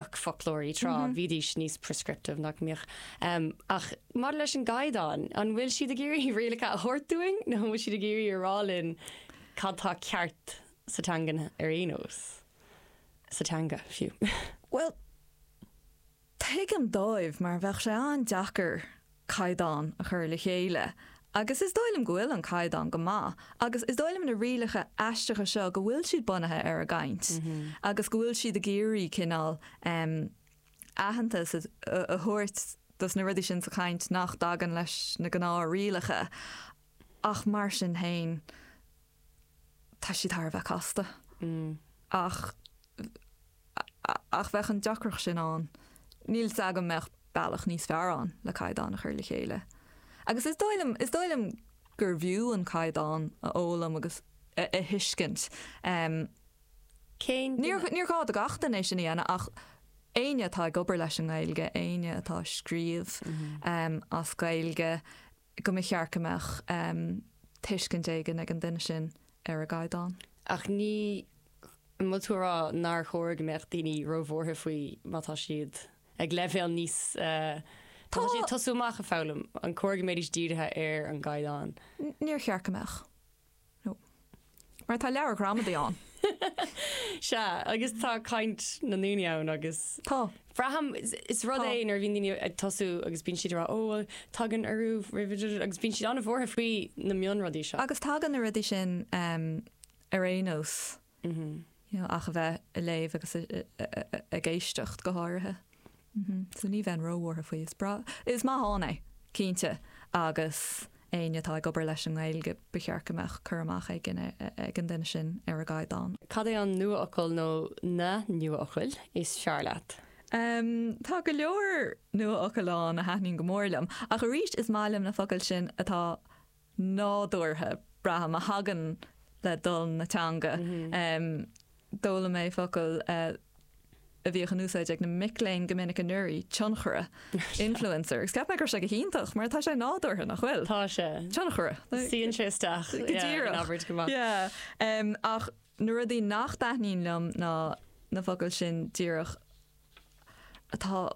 foclóirí tráth, bhídís níos prescriptive, nach mbíodh? Ach maidir leis an gCaighdeán, an bhfuil siad ag iarraidh rialacha a thabhairt dúinn nó an bhfuil siad ag iarraidh a rá linn cad tá ceart sa teangain ar aon nós? Sa teanga, fiú. Bhuel, tuigim dóibh mar bheadh sé an-deacair caighdeán a chur le chéile agus is dóigh liom go bhfuil an caighdeán go maith agus is dóigh liom na rialacha aisteacha seo go bhfuil siad bunaithe ar a gcaint agus go bhfuil siad ag iarraidh cineál em aitheantas a thabhairt dos na rudaí sin sa chaint nach dtagann leis na gnáth rialacha ach mar sin féin tá siad thar a bheith casta. Ach ach bheadh an deacracht sin ann. Níl fhios agam an mbeadh bealach níos fearr ann le caighdeán a chur le chéile. Agus is dóigh liom is dóigh liom gur bhfiú an caighdeán a fhoghlaim agus a thuiscint. Em, níor ghá do gach duine é sin a dhéanamh ach éinne atá ag obair leis an nGaeilge, éinne atá ag scríobh as Gaeilge. go mba cheart go mbeadh tuiscint éigin ag an duine sin ar a gcaighdeán. Ach ní, an bhfuil tú ag rá nár chóir go mbeadh daoine ró-bhuartha faoi má tá siad ag leibhéal níos eh, má tá siad ag tosú amach ag foghlaim, an cóir go mbeidís dírithe ar an gcaighdeán? Níor cheart go mbeadh. No. Mar tá leabhar gramadaí ann. Sea, agus tá caint na ndaoine ann agus. Tá. Braithim, is rud é nuair a bhíonn daoine ag tosú agus bíonn siad ag rá 'Ó, tagann urú roimh' agus bíonn siad an-bhuartha faoi na mionrudaí seo. Agus tagann na rudaí sin ar aon nós. you know, ach a bheith ag léamh agus ag éisteacht go háirithe. So ní bheinn róbhuartha faoi. Is breá, is maith ann é, cinnte, agus éinne atá ag obair leis an nGaeilge ba cheart go mbeadh cur amach éigin ag an duine sin ar a gcaighdeán. Cad é an nuafhocal nó na nuafhocail is fearr leat? Tá go leor nuafhocail ann a thaitníonn go mór liom, ach arís is maith liom na focail sin atá nádúrtha, braithim, a thagann le dul na teanga. D'fhoghlaim mé focal a bhíodh in úsáid ag na mic léinn go minic anuraidh, tionchaire, influencer, agus cheap mé go raibh sé go hiontach mar tá sé nádúrtha, nach bhfuil? Tá sé. Tionchaire. Suíonn sé isteach. Go díreach. Yeah. Um, ach na rudaí nach dtaitníonn liom ná na focail sin díreach atá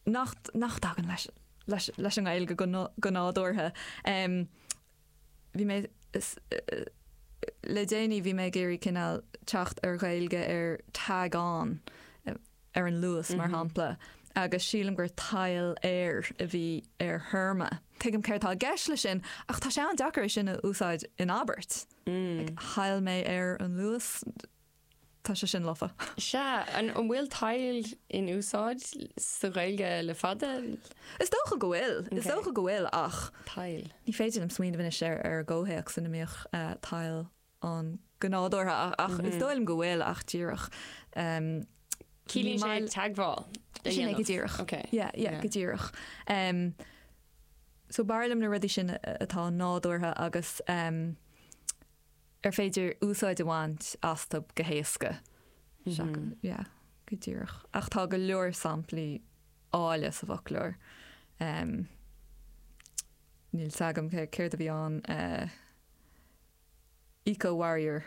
nach nach dtagann leis leis leis an nGaeilge go ná go nádúrtha. Bhí mé le déanaí bhí mé ag iarraidh cineál teacht ar Ghaeilge ar Tag On ar an Luas mar shampla agus sílim gur Tadhall Air a bhí ar théarma. Tuigim céard tá i gceist leis sin ach tá sé an-deacair é sin a úsáid in abairt. Like, Thadhaill mé ar an Luas. tá sé sin lofa. Sea, an bhfuil tadhaill in úsáid sa Ghaeilge le fada? Is dócha go bhfuil, is dócha go bhfuil ach. Tadhaill. Ní féidir liom smaoineamh anois ar ar an gcomhthéacs ina mbíodh tadhaill ann go nádúrtha ach is dóigh liom go bhfuil ach díreach Ciallaíonn sé teagmháil. Sin é go díreach. Ok. Yeah, yeah, go díreach. Um so b'fhearr liom na rudaí sin atá nádúrtha agus um. ar féidir úsáid a bhaint astub go héasca, seachas, yeah, go díreach. Ach tá go leor samplaí áille sa bhfoclóir. em, níl 's agam cé, céard a bhí ann, eh, eco-warrior,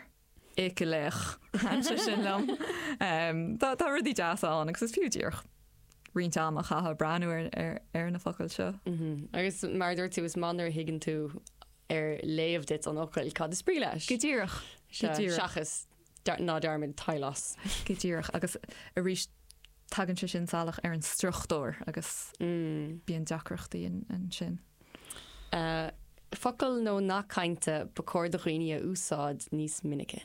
éici-laoch, thaitin sé sin liom. Em, tá, tá rudaí deasa ann agus is fiú díreach roinnt ama a chaitheamh ag breathnú ar, ar, ar na focail seo. Mhm. Agus mar a dúirt tú, is maith nuair a thuigeann tú ar léamh duit an fhocail cad is brí leis? Go díreach. Go díreach. Seachas dar, ná dearmad teaghlaigh. Go díreach agus arís tagann sé sin salach ar an struchtúr agus mm. bíonn deacrachtaí ansin. Uh, focail nó nath cainte ba chóir do dhaoine a úsáid níos minice.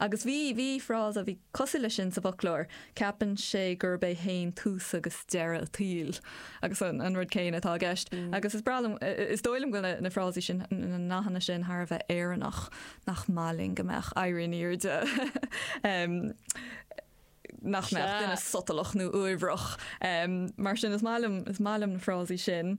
Agus bhí, bhí frása a bhí cosúil leis sin sa bhfoclóir, ceapann sé gurb é féin tús agus deireadh a' tsaoil, agus an, an rud céanna atá i gceist. Agus is breá liom, is dóigh liom go bhfuil na frásaí sin, na nathanna sin thar a bheith Éireannach, nach maith linn go mbeadh, éirí in airde, nach mbeadh duine sotalach nó uaibhreach. Mar sin is maith liom, is maith liom na frásaí sin.